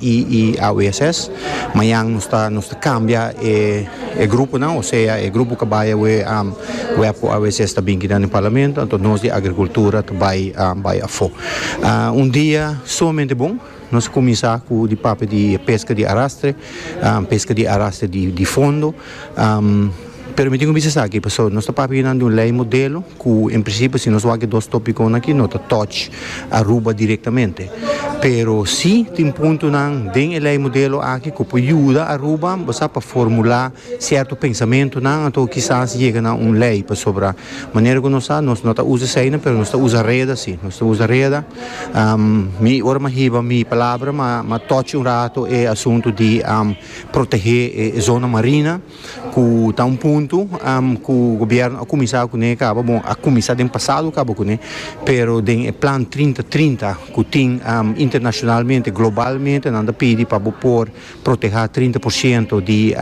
y AWSS, mañan nos ta nos ta cambia e e grupo nan, osea e grupo cu bay awe web cu AWSS ta binki nan den Parlamento, anto nos di Agricultura ta bay bay afo. Un dia sumamente bon, nos a cuminsa cu di papia di pesca di arrastre, pesca di arrastre di fondo. Pero mi tin ku bisa esaki pasobra nos ta papia nan di un lei modelo ku en prinsipio si nos wak e dos topikonan aki no ta touch Aruba direktamente pero si tin puntonan den e lei modelo aki ku por yuda Aruba bo sa pa formula sierto pensamentonan anto kisas yega na un lei pasobra manera ku nos sa nos no ta usa eseinan pero nos ta usa reda si nos ta usa reda mi ora mi a hiba mi palabra mi a touch un rato e asunto di. Protehé e zona marina ku ta un puntu ku gobièrnu a kuminsá kuné kaba bon a kuminsá den pasado kaba kuné pero den e plan trinta trinta ku tin internashonalmente globalmente nan ta pidi pa bo por protehá trinta por shento di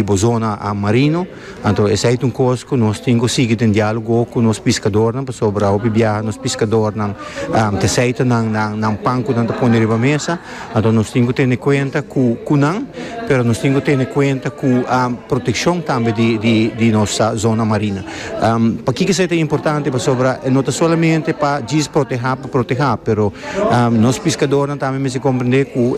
bo zona marino. Anto esei ta un kos ku nos tin ku sigui den diálogo ku nos piskadornan pasobra hopi biaha nos piskadornan ta seita nan nan pan ku nan ta pone riba mesa. Anto nos tin ku tene kuenta ku ku nan pero nos tin ku tene kuenta ku protekshon tambe di di di nos zona marina. Pakiko esei ta importante pasobra e no ta solamente pa djis protehá pa protehá pero nos piskadornan tambe mester komprendé ku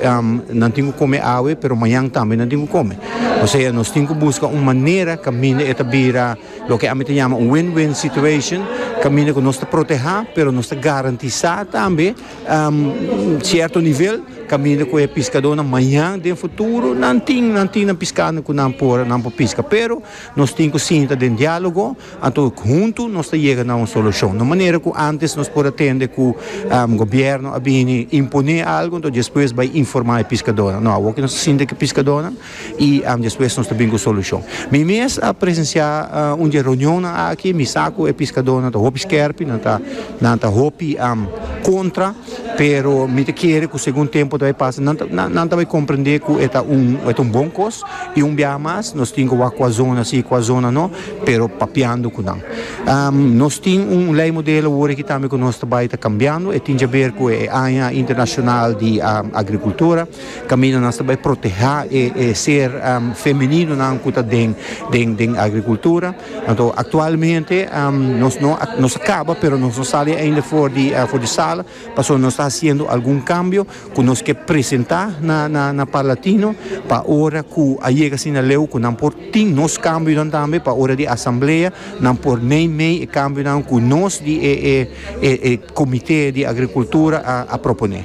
nan tin ku kome awe pero mañan tambe nan tin ku kome. P'esei nos tin ku buska un manera kaminda e ta bira loke ami ta yama un win-win situation, kaminda ku nos ta protehá pero nos ta garantisá tambe sierto nivel kaminda ku e piskadónan maña den futuro nan tin nan tin nan piskando ku nan por piska. Pero nos tin ku sinta den diálogo. Anto huntu nos ta yega na un solushon. No manera ku antes nos por a tende ku gobièrnu a bini imponé algu anto despues bai informá e piskadónan. No, awor ku nos ta sinti ku e piskadónan i despues nos ta bini ku e solushon. Mi mes a presensiá un di e reunionnan aki, mi sa ku e piskadónan ta hopi skèrpi, nan ta nan ta hopi kontra, pero mi ta kere ku segun tempu ta bai pasa nan ta nan ta bai komprendé ku e ta un e ta un bon kos i un biaha mas nos tin ku wak ku a zona si ku a zona no. pero papiando cu nan. Nos tin un ley modelo wor aki tambe cu nos ta bay ta cambiando, e tin caber cu e Aña Internacional di Agricultura, caminda nos ta bay proteha e ser femeninonan cu ta den den agricultura. Anto actualmente nos no nos a caba pero nos no sali ainda for di sala. Pasobra nos ta hasiendo algun kambio ku nos ke presentá na Parlatino pa ora ku a yega asina leu ku nan por tin nos kambionan tambe pa ora di asamblea nan por nei mei e kambionan ku nos di e Komité di Agrikultura a proponé.